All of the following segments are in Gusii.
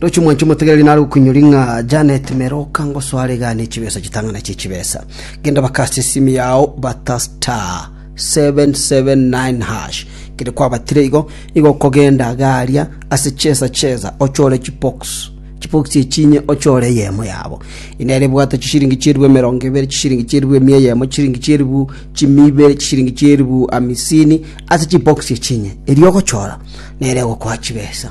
Roche omwanchi omotegereri nare okoinyori ng'a Janet mere okangosoa are gane chibesa chitang'ana chie chibesa. Genda bakaase esimi yao bata *779# kere kwabatire igo nigo okogenda iga aria ase chesa chesa ochore chibox chibox echi inye ochore eyemo yabo. Eye nere ebwate chisiringi chieribu emerongo ebere chisiringi chieribu emia eyemo chisiringi chieribu chimi ibere chisiringi chieribu hamisini ase chibox echi inye. Erio ogochora nere egokoa chibesa.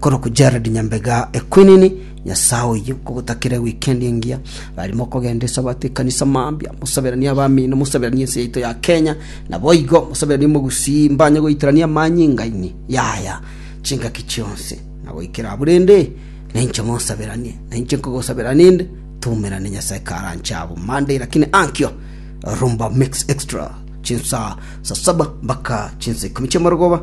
Korokwo Gerald Nyambega Equinini, Nyasae oyio nkogotakere weekend engiya. Rarimo okogenda esabato ekanisa mambia, mosaberanie abamino, mosaberanie ense yaito ya Kenya, naboigo mosaberanie mogusii mbanye goitorania amanyinga ime yaya chingaki chionsi na goikera abwo rende nainche monsaberanie. Nainche nkogosabera ninde tumerane Nyasae karanche abo Monday lakini ankio Rumba Mix Extra chinsa sa saba mpaka chinsa ikomi chiamarogoba